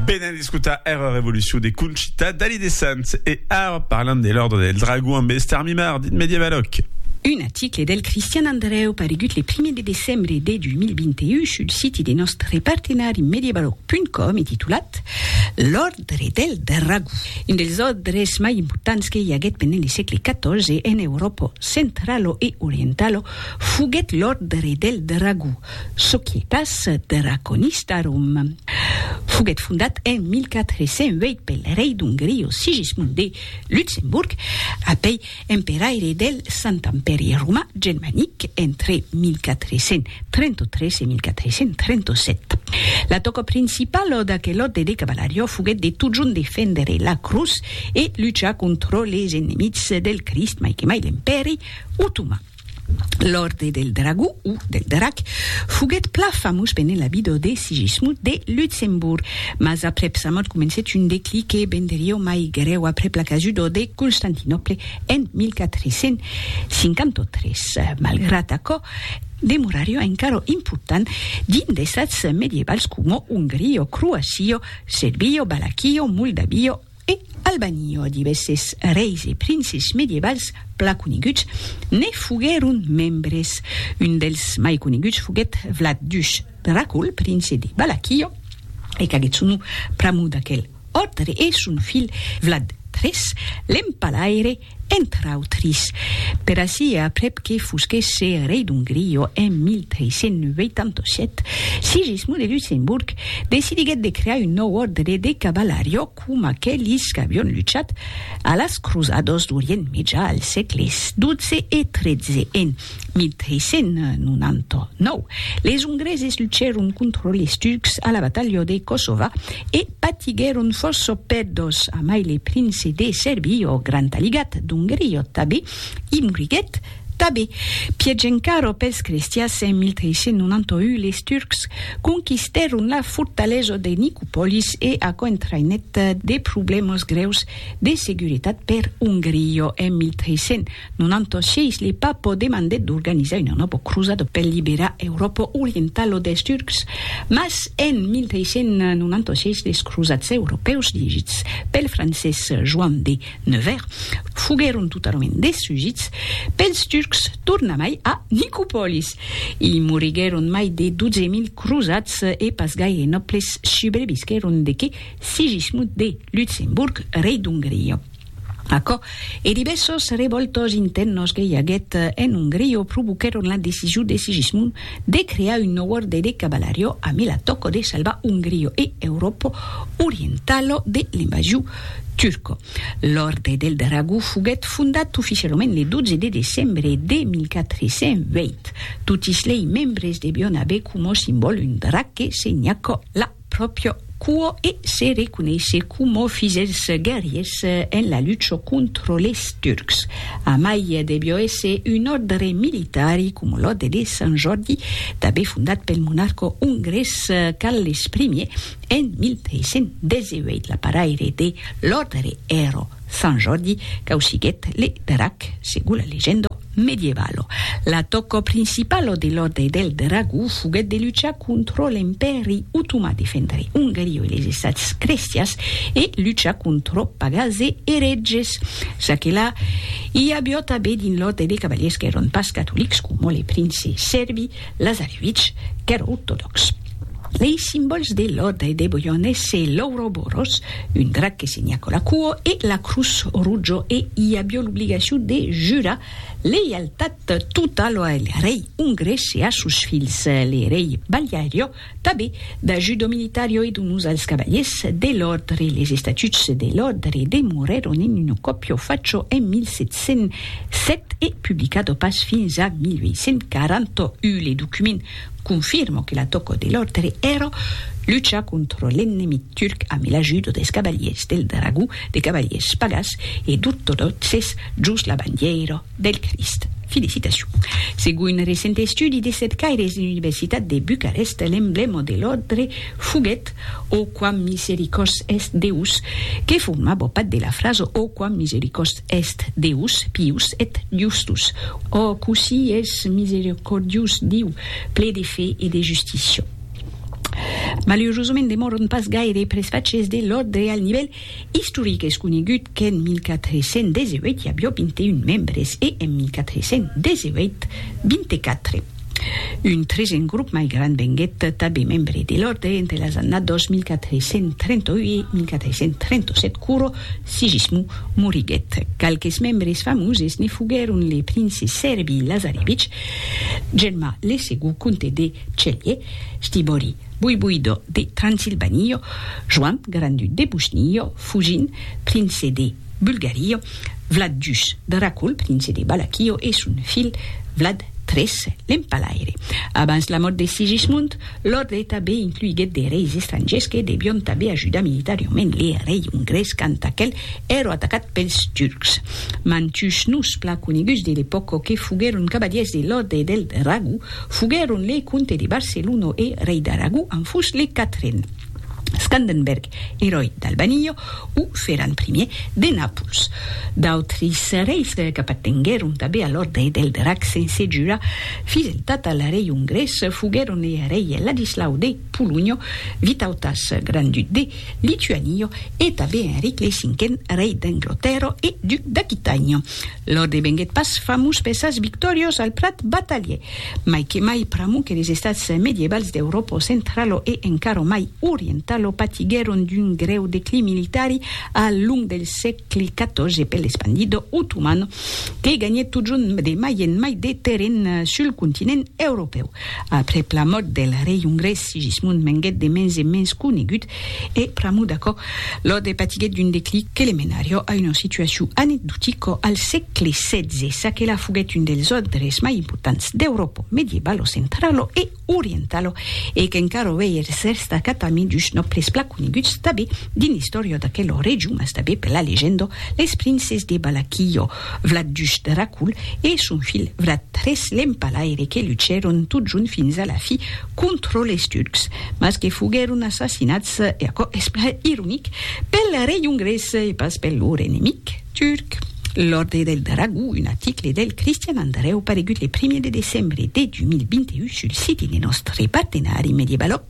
Venen d'escotar era revolucion de Conchita Dalí de Sants e ara parlam de l'Òrdre del Dragon ambe Esther Mimard, dit Medievaloc. Un aticle del Cristian Andrèu paregut le primier de decembre de 2021 sul siti de nòstre partenari medievaloc.com e titulat L'Òrdre del Dragon, un dels òrdres mai importants que i aguèt pendent le sègle XIV en Euròpa centralo e orientalo foguèt l'Òrdre del Dragon, Societas Draconistarum foguèt fondat en 1408 pel rei d'Ongria Sigismund de Luxemborg, apèi emperaire del Sant Empèri Romà Germanic entre 1433 e 1437. La tòca principala d'aquel òrde de cavalariá foguèt de totjorn defendre la crotz e luchar contra les enemics del Crist, mai que mai l'Empèri Otoman. L'Òrde del Dragó, o del Drac, foguèt plan famós pendent la vida de Sigismund de Luxemborg, mas aprèp sa mòrt comencèt un declic que venderió mai grèu aprèp la casuda de Constantinòple en 1453. Malgrat aquò, demorarió encara important dins d'estats medievals coma Ongria, Croacia, Serbia, Valaquia, Moldavia, E Albani, ò divèsses reis e princes medievals plan coneguts ne foguèron membres. Un dels mai coneguts foguèt Vlad Dush Dracul, prince de Valakio, e qu'agèt son nom pr'amor d'aquel òrdre, e son filh Vlad iii, l'empalaire, entre autris, per ací e aprèp que fosquèsse rei d'Ongria en 1387, Sigismond de Luxemborg decidiguèt de crear un nòu òrdre de cavalarió coma aquelis qu'avion luchat a las crosadas d'Orient Mejà al sègle xii e xiii en 1399, les Ongreses luchèron contra les Turcs a la batalha de Kosova e patiguèron fòrça pèrdas, amai le prince de Sèrbi, ò Grand Aligat d'Ongria tabé, i moriguèt tabé. Pièch encara pels crestians, en 1391 les Turcs conquistèron la fortalesa de Nicopolis e aquò entraïnèt de problèmas grèus de seguretat per Ongria en 1391. Non anto sièis li pas po demandèt d'organizar una nòbo crosada per liberar Euròpa orientala des Turcs, mas en 1396 les crosats europèus dirigits pel francés Joan de Nevers foguèron totalament destrugits pels Turcs tornamai a Nicopòlis. I moriguèron mai de 12.000 crosats e pas gaire nòbles subrevisquèron de que Sigismund de Lutzemburg, rei d'Ongria. Aquò e divèssos revòltos intèrnos que i aguèt en Ongria provoquèron la decision de Sigismund de crear un nòu òrde de cavalario amé la tòca de salvar Ongria e Euròpa orientala de l'invasion turca. L'Òrde del Dragó foguèt fondat oficialament le 12 de decembre de 1420. Totis lei membres devián aver coma simbòl un drac que senhaca la pròpria cua e se reconeisse coma fils dels guerriers en la lucha contra les Turcs. Amai devió èsser un òrdre militari, coma l'òrdre de Sant Jòrdi, tanben fondat pel monarca ongrés Carles I en 1318. L'aparaire de l'òrdre èra Sant Jordi causiguèt le drac, segon la legenda medievala. La tòca principala de l'Òrdre del Dragó foguèt de luchar contra l'Empèri Otomà, defendre Ongaria e les Estats crestians e luchar contra pagans e erètges. Ça que la, i aviá tanben dins l'Òrdre de cavaliers qu'èran pas catolics, coma le prince sèrbi Lazarevich, qu'èra ortodòx. Lei simbòls de Lòda e de Boion esse l'Ouroboros, un drac que se nhaco la cuo, e la Crus Rugio e i avió l'obligacion de jurar leialtat totalo a le rei ongrés e a sos filhs, le rei Baliario, tanben da Judo Militario e donós als cavaliers de l'òrdre. Les estatuts de l'òrdre demorèron en un còpio facho en 1707 e publicado pas fins a 1841. Le document Confirmo que la tòco de l'òrdre èra luchar contra l'ennemic turc ame l'ajudo des cavaliers del dragó, de cavaliers pagàs e d'ortodòxes jos la bandièira del Crist. Felicitacion. Segon un recent estudi de cercaires de l'Universitat de Bucarest, l'emblèma de l'òrdre foguèt O quam misericors est Deus, que formava part de la frasa O quam misericors Est Deus pius et justus. Ò, cossí es misericordius Diu, ple de fe e de justícia! Malerosament demòron pas gaire pres faches de l'òrdre al nivèl istoric. Es conegut qu'en 1418 i avió 21 membres e en 1418, 24. Un tresen grop mai grand venguèt tanben membre de l'òrdre entre las annadas 1438-1437 quoro Sigismond moriguèt. Qualques membres famoses ne foguèron le prince Serby Lazarevich, Germà le segond comte de Celje, Stibori voivoidò de Transilvanio, Joan grand-duc de Bosnio, Fugin, prince de. Bulgario, Vlad Jus, Dracul, prince de Balaquio, e son filh Vlad tres, l'empalaire. Abans la mòrt de Sigismund, l'òrdre tanben incluiguèt de reis estrangèrs que devion tanben ajudar militariament le rei ongrés quand aquel èra atacat pels turcs. Mantuns noms plan coneguts de l'epòca que foguèron cavalièrs de l'òrdre del Dragó foguèron le comte de Barcelona e rei d'Aragó en fus le quatren, Scandenberg, eròi d'Albanio, o feran primier de Napuls. D'autris reis qu'apatenguèron tabé a l'Òrdre del Drac sense jura fideltat al rei ongrés foguèron e rei Ladislau de Polonha, Vitautas, grand-duc de Lituania, e tabé Enric lei Cinquen, rei d'Anglotèrra e duc d'Aquitània. L'òrdre venguèt pas famós per sas victòrios al plat batalhè, mai que mai pr'amor que les estats medievals d'Euròpo centralo e encara mai orientalo patiguèron d'un grèu declin militari al long del sègle xiv per l'espandido otoman que ganhèt totjorn de mai en mai de terren sul continent europèu. Aprèp la mòrt del rei ongrés Sigismund venguèt de mens en mens conegut E pr'amor d'aquò, Lode patiguèt d'un declic que le menarió a una situacion anecdotica al sègle setze, ça que la foguèt un dels òdres mai importants d'Euròpa medievalo centralo e orientalo e qu'encara uèi es destacat amid dus nòbles plan coneguts tanben dins l'istòria d'aquela region mas tanben per la legenda, les princes de Balaquillo. vlat duch Dracul e son filh vlat Tres l'Empalaire que luchèron totjont fins a la fi contra les Turcs, mas que foguèron assassinats, e aquò es plan ironic, pel rei ongrés e pas per lor enemic turc. L'Òrdre del Dragó, un article del Cristian Andrèu paregut le primièr de decembre de 2021 sul site de nòstre partenari Mediebaloc.